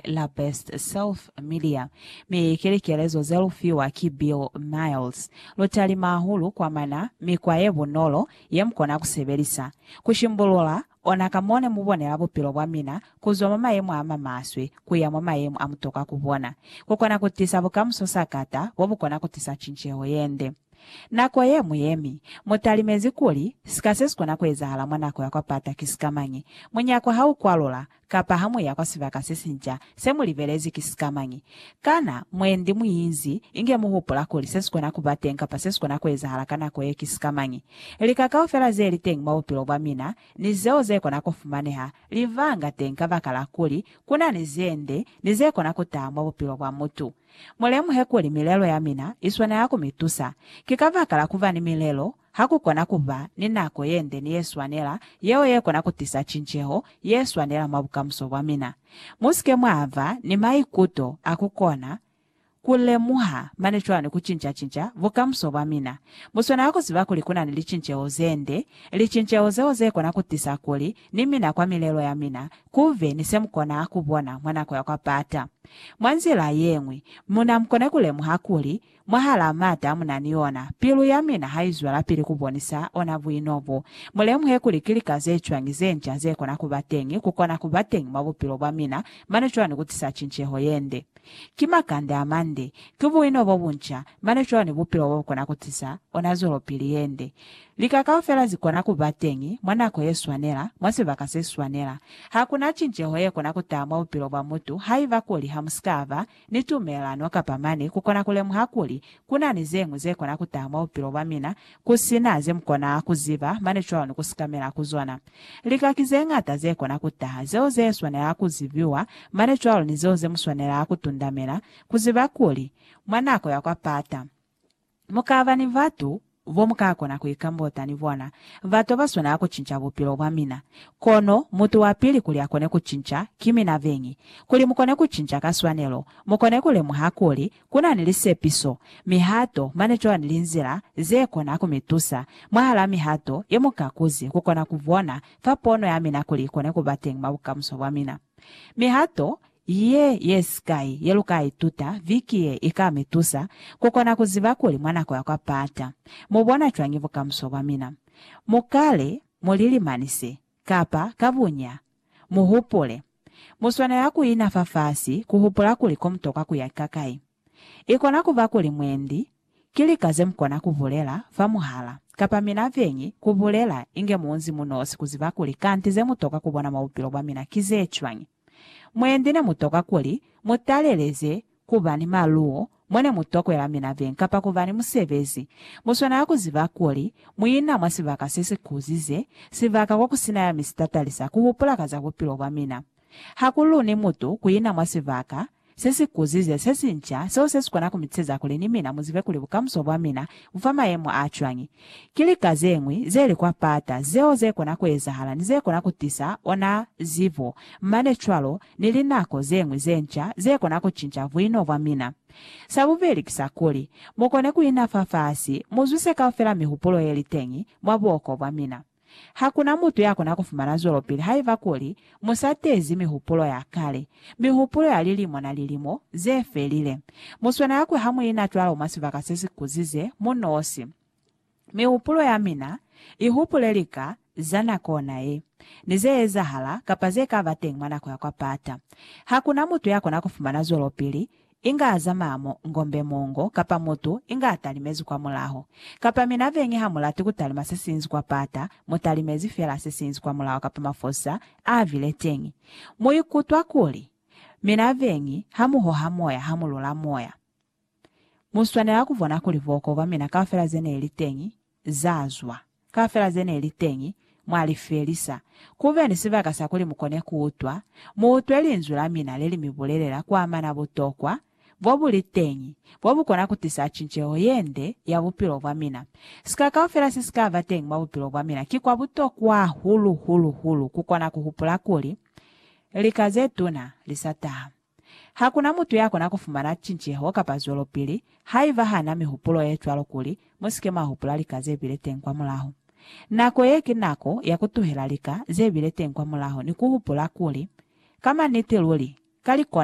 la Best Self Media mi ki likelezo ze lu fiwa ki Bill Miles. Lu talima hahulu kwa mana mikwa ye bunolo ye mu kona ku sebelisa ku shimbulula ona ka mo ne mu bonela bupilo bwa mina ku zwa mwa mayemo a ma maswe ku ya mwa mayemo a mu tokwa ku bona ku kona ku tisa bukamuso sakata bo bu kona ku tisa cinceho ye nde. Nako ye mu yemi, mu talimezi kuli sika se si kona ku ezahala mwa nako ya kwa pata ki sikamañi. Munyako ha u kwalula, Kapa ha mu ya kwa sibaka se sinca, se mu libelezi ki sika mañi? Kana mwendi mu inzi inge mu hupula kuli se si kona ku ba teñi kapa se si kona ku ezahala ka nako ye ki sika mañi? Lika kaufela ze li teñi mwa bupilo bwa mina, ni zeo ze kona ku fumaneha, li vanga teñi kabakala kuli ku na ni ze nde ni ze kona ku taha mwa bupilo bwa mutu. Mu lemuhe kuli milelo ya mina i swanela ku mi tusa. Ki kabakala ku ba ni milelo, Ha ku kona ku ba ni nako ye nde ni ye swanela, yeo ye kona ku tisa cinceho ye swanela mwa bukamuso bwa mina. Mu si ke mwa ba ni maikuto a ku kona ku lemuha mane cwalo ni ku cinca-cinca bukamuso bwa mina. Mu swanela ku ziba kuli ku na ni licinceho ze nde, licinceho zeo ze kona ku tisa kuli ni mina kwa milelo ya mina ku be ni se mu kona ku bona mwa nako ya kwa pata. Mwa nzila ye ñwi, mu na mu kone ku lemuha kuli Mwahalaa m'ata munani yona, pilu yamina haizwelapili kubonisa ona buino bo. Mulemuhe kuli ki lika zecwañi zenca zekona kuba teñi, kukona kuba teñi mwa bupilo bwamina, mane cwani kutisa cinceho yende. Ki makande amande, ki buino bobunca, mane cwani bupilo bobukona kutisa ona zwelopili yende. Lika kaufela zikona kuba teñi, mwa nako yeswanela, mwa sibaka seswanela. Hakuna cinceho yekona kutaha mwa bupilo bwa mutu haiba kuli hamusika ba ni tumelelano kapa mane kukona kulemuha kuli kunani zeñwi zekona kutaha mwa bupilo bwamina kusina zemukona kuziba mane cwalo ni kusikamela ku zona. Lika ki zeñata zekona kutaha, zeo zeswanela kuzibiwa mane cwalo ni zeo zemuswanela kutundamela kuziba kuli, mwa nako ya kwa pata, Mu ka ba ni batu bo mu ka kona ku ikambota ni bona, bato ba swanela ku cinca bupilo bwa mina. Kono mutu wa pili kuli a kone ku cinca, ki mina beñi. Kuli mu kone ku cinca ka swanelo, mu kone ku lemuha kuli ku na ni lisepiso, mihato, mane cwani linzila ze kona ku mi tusa. Mwahal'a mihato ye mu ka kuzi ku kona ku bona fa pono ya mina kuli i kone ku ba teñi mwa bukamuso bwa mina, mihato Ye yesikai yelukaituta viki ye ikamitusa kukona kuziba kuli mwa nako ya kwa Pata mubona cwañi bukamuso bwa mina. Mukale mulilimanise, kapa ka bunya, muhupule. Muswanela kuina fafasi kuhupula kuli komutokwa kuya kakai. Ikona kuba kuli mwendi ki lika zemukona kubulela fa muhala, kapa mina vyeñi, kubulela inge muunzi munosi kuziba kuli kanti zemutokwa kubona mwa bupilo bwamina ki zecwañi. Mwendi nemutokwa kuli mutaleleze kuba ni maluwo mone mutokwela mina vyeñi kapa kuba ni musebezi, muswanela kuziba kuli muina mwa sibaka sesikuzize, sibaka kokusina ya mi sitatalisa kuhupula ka za bupilo bwamina. Hakuluni mutu kuina mwa sibaka Se si kuzize se si nca, seo se si kona ku mi tiseza kuli ni mina mu zibe kuli bukamuso bwa mina bu fa mayemo a cwañi. Ki lika ze ñwi ze li kwa pata zeo ze kona ku ezahala ni ze kona ku tisa ona zibo, mane cwalo ni linako ze ñwi ze nca ze kona ku cinca buino bwa mina. Sa bubeli ki sa kuli, mu kone ku ina fafasi, mu zwise kaufela mihupulo ye li teñi mwa buoko bwa mina. Ha ku na mutu ya kona ku fumana zwelopili haiba kuli mu sa tezi mihupulo ya kale, mihupulo ya lilimo na lilimo ze felile. Mu swanela ku hamuina cwalo mwa sibaka se si kuzize mu nosi. Mihupulo ya mina i hupule lika za nako ona ye, ni ze ezahala kapa ze ka ba teñi mwa nako ya kwa pata. Ha ku na mutu ya kona ku fumana zwelopili inga azamaa mo ngombe mongo, kapa mutu inga atalimezi kwa mulaho. Kapa mina beñi ha mulati kutalima sesinzi kwa pata, mutalimezi fela sesinzi kwa mulaho kapa mafosa aabile teñi. Muikutwa kuli, mina beñi, ha muhoha moya, ha mulula moya. Muswanela kubona kuli booko bwamina kaufela zeneili teñi, za zwa kaufela ze ne li teñi, mwa li felisa. Ku be ni sibaka sa kuli mu kone ku utwa, mu utwe linzwi la mina le li mi bulelela ku amana butokwa bo bu li teñi, bo bu kona ku tisa cinceho ye nde ya bupilo bwa mina. Sika kaufela se si ka ba teñi mwa bupilo bwa mina ki kwa butokwa hahulu-hulu-hulu ku kona ku hupula kuli lika ze tuna li sa taha. Ha ku na mutu ya kona ku fumana cinceho kapa zwelopili haiba ha na mihupulo ye cwalo kuli mu si ke mwa hupula lika ze bile teñi kwamulaho. Nako ye ki nako ya ku tuhela lika ze bile teñi kwamulaho ni ku hupula kuli, Ka maniti luli, ka li kona.